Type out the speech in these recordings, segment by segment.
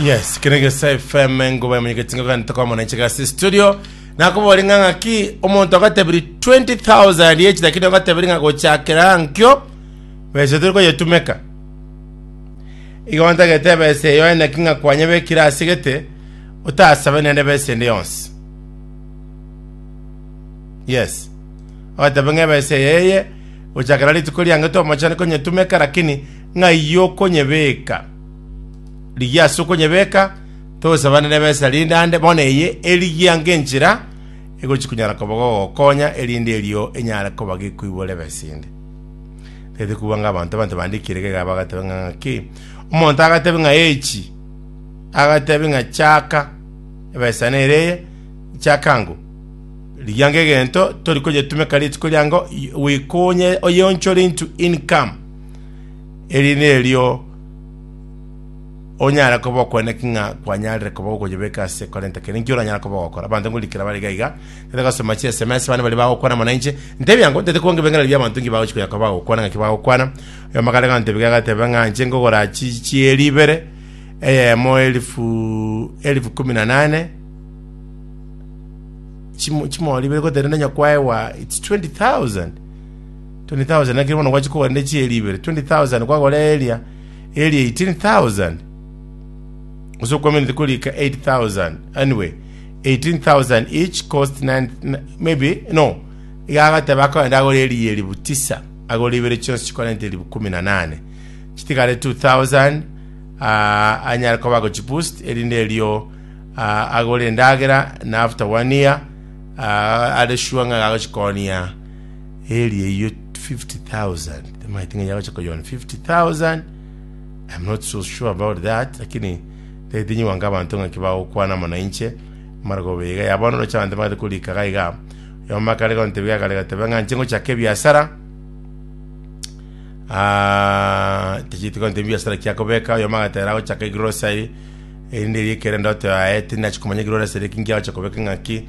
yes kene gesa fm engoba emenyeketi ngaka ntokomona enchega ase studio nakobori ng'a ng'aki omonto agatebiri 20000 yechi lakini agatebiri ng'a gochakera nkio besa turi koyetumeka igo ntagete besa eyo ene ki ng'a kwanyebekire ase gete otasabe nende besa ende yonsi yes agatebe ng'a ebesa eye eye gochakera rituko riange tomochani konyetumeka lakini Ng'ai okonyebeka? Rigia ase okonyebeka, tosabane nebesa rinde ande, bono eye erigia ng'enchera egochia konyara koba gogokonya, erinde erio enyare koba gekoiborera ebesa ende. Tagete kobua ng'a abanto abanto bande ekirego iga bagateba ng'a ng'aki, omonto agatebe ng'a echi, agatebe ng'a chaka, ebesa nere eye, chaka ango. Rigia ng'egento tori konyetumeka rituko riango, i- wekonye oyeonchore into income. Eri nerio onyare koba okweneki ng'a kwanyarire koba gokonyebeka ase korenta kende nkio oranyare koba ogokora. Abanto ngorikera bare iga iga, tete gosoma chi SMS bande baria bagokwana mono inche, ntebi yango ntete kwange ebeng'enari bia abanto nki bagochi konya koba bagokwana ng'aki bagokwana. Oyomo kare gantebia iga agateba ng'a inche nkogora chi chieri ibere, eyemo elifu elifu kumi na nane, chimo chimori ibere gotenena onye kwaewa it's 20,000. 20,000 nakere bono gwachia kogora rende chieri ibere, 20,000 kwagora eria, eria 18,000 gose okwamenete korika 8,000 anyway 18,000 each cost 9 n- maybe no iga agateba akoenda agora eria eribu tisa agora ibere chionsi chikorente eribu kumi na nane chitigare 2,000 ah, anyare koba agochiboost erinde erio ah, agore endagera na after one year ah, are sure ng'a agochikonia Eeri eyio 50,000 timaeti ng'a yagocha koyona 50,000 I'm not so sure about that lakini tete nyigwanka abanto ng'aki bagokwana amo nainche mara gobega ya bono rocha abanto bagate korika gaiga yoma kare gontebi gakare gatebe ng'a nche ngochaka ebiasara Ah, tichiti gontebi biasara kia kobeka yoma agatera gochaka egrocery erinde eri ekerende otoyaye tinachi komanya egrocery kingi agocha kobeka ng'aki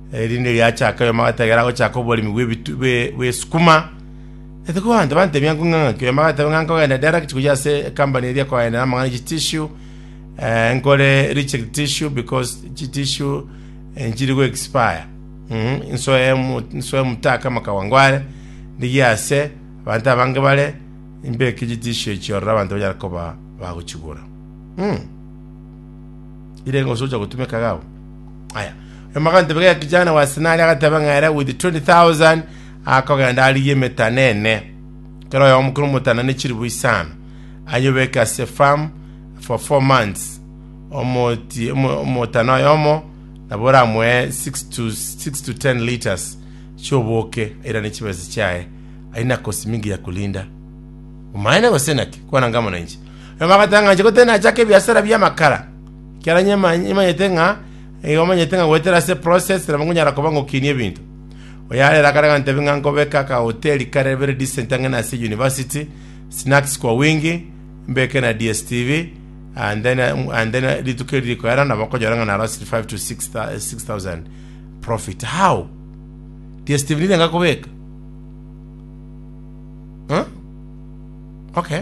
Erinde riachaka oyomama agatebera agochaka oboremi bw'ebitu- bwe- bw'esukuma. Etuko abanto bantemia ng'o ng'a ng'ake oyomama agateba ng'a nkogenda direct gochia ase ekambani eria koenda namang'ana ye chitissue, eh, nkore reject tissue because chitissue eh, nchiri go expire. Mhm, nsoe mu- nsoe mutaka amakawango are, ndigie ase abanto abange bare, mbeke chitissue echio ororo abanto banyare koba bagochigura. Mhm. Irenge gose ocha gotumeka iga abwo. Aya. Oyomba agantebe gaiga kijana wa Sinari agateba ng'a ere with 20,000 akogenda arigie emetana ene. Kera oyomo kera omotana ne chiribu isano. Anyobeke ase farm for four months. Omoti, omo- omotana oyomo nabo oramoe 6 to, 6 to 10 liters chioboke airane chibese chiaye aina kosi mingi ya kulinda umaene gose naki kwana ngamo na inche Na bagatangacha gotenda achake ebiasara bi'amakara, ekiagera onye nimanyete ng'a nigo omanyete ng'a goetera ase process nabo nkonyara koba ngokinie ebinto. Oyarera akare gantebia ng'a nkobeke akahoteli kare very decent ang'e na ase university, snacks kwa wingi, mbeke na DSTV, and then and then rituko eri rikoera nabo nkonyora ng'a narosire 5 to 6 thou- 6000 profit. How? DSTV nirenga kobeka? Huh? Okay.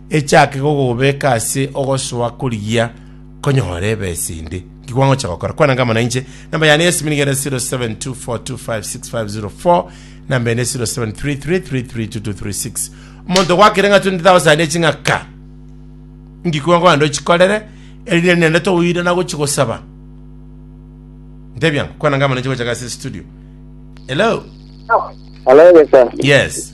Echaake kogobeeka ase ogosoa korigia konyore ebesa ende. Nki kwangocha gokora? Kwanange amo nainche. Namba yane ya simi niga ere 0724256504 namba ende 0733332236. Omonto gwakire ng'a 20,000 eching'aka nki kwangogenda ochikorere erinde nende togoirana gochi gosaba ntebiango kwanange amo nainche gocha gase studio hello Hello, Gesa. yes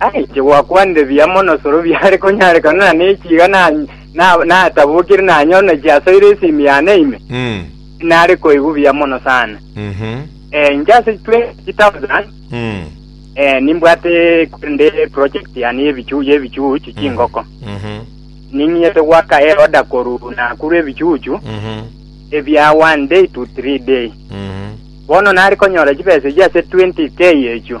Aye inche gwakwanire buya mono soro biare konyarekana na nechi iga natabokire nanyone chiasoire esimi yane ime, tinare koigwa buya mono sana. Ee, inche ase 20,000 nimbwate korende project yane y'ebichuchu chingoko. Ning'inyete gwaka eroda korwa Nakuru ebichuchu ebia one day to three day. Bono nare konyora chibesa echio ase 20k echio.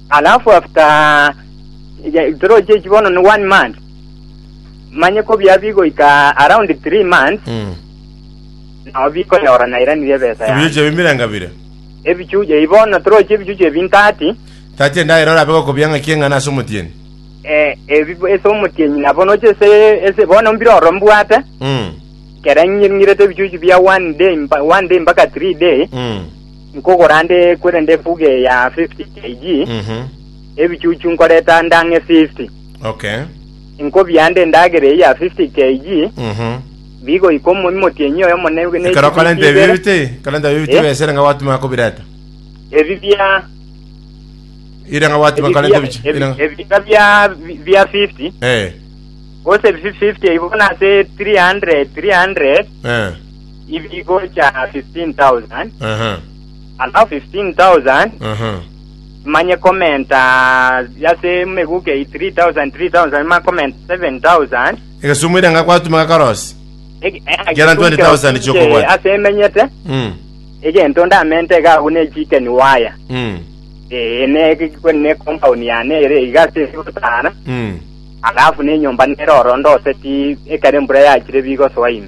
Alafu after ya- toroche echi bono ni one month manye ko bia bigoika around three months Mm. nao bikonyora nairanirie ebesa Ebichuchu yane ebio mbiranga bire. ebichuchu ebi bono toroche ebichuchu ebi ntati Tati endaera orabe gokobia ng'aki eng'ana ase omotienyi. eh, ebi ase omotienyi nabo noche ase ase bono mbire oro mbwate Mm. kera ng'irng'irete ebichuchu bia one day mpa- one day mpaka three day Mm. Nkogora nde kwerende efugo eya 50 kg, Mhm. ebichuchu nkoreta ndang'e 50. Okay. Inkobia nde endagera eye ya 50 kg, Mhm. bigoika omo- emotienyi oyo omo ne- ne- Ekero kore nte ibere. bibite, kore nte bibite Eh? besere nga gwatuma kobireta. Ebi bia Ire nga gwatuma ebi kore bia- nte bichi. ebi- Ire nga- ebika bia bia 50 Eh. gose 50 igo nase 300 300 ibigocha 15,000, Aha. alafu 15,000 Aha. manye komenta yase meguke 3,000 3,000 manye komenta 7,000 Egesumu ere nga kwatumeka korosi. Ege- eh, Gera 20,000 egisumukero chiokobwata. kire ase emenyete Mm. egento ndamente iga agwo ne chicken wire Mm. Eh, ne ne compound yane ere iga ase gotara Mm. alafu ne nyomba nere oro ndoseti ekero embura yachire bigosoa ime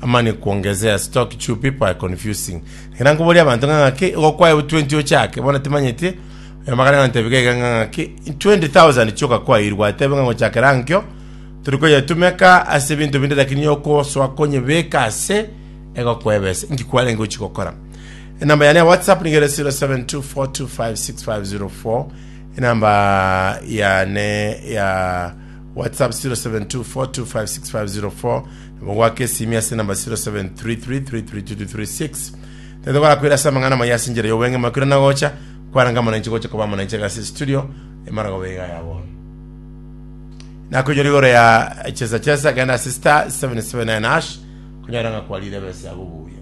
Amani kuongezea stock chew people are confusing ekero nkoboria abanto ng'a ng'aki igo kwaye bu 20 ochake bono timanyeti oyo magana nantebige iga ng'a ng'aki 20000 chioka kwairwa atebe ng'a gochakera nkio turi koyetumeka ase ebinto binde lakini yokosoa konyebeka ase ego kwebesa inki kwarenge gochi gokora enamba yane ya whatsapp niga ere 0724256504 enamba yane ya whatsapp 0724256504 Nigo goaka esimi ase enamba 07333336 tete gorakwera ase amang'ana amaya ase enchera y'obweng'e makiro na gocha kwarenge amananchi gocha koba amananchi agase estudio emara koba iga ya bono nakoinyora igoro ya chesa chesa genda ase star 779 ash kunyara ng'a kwarire besa yabo buya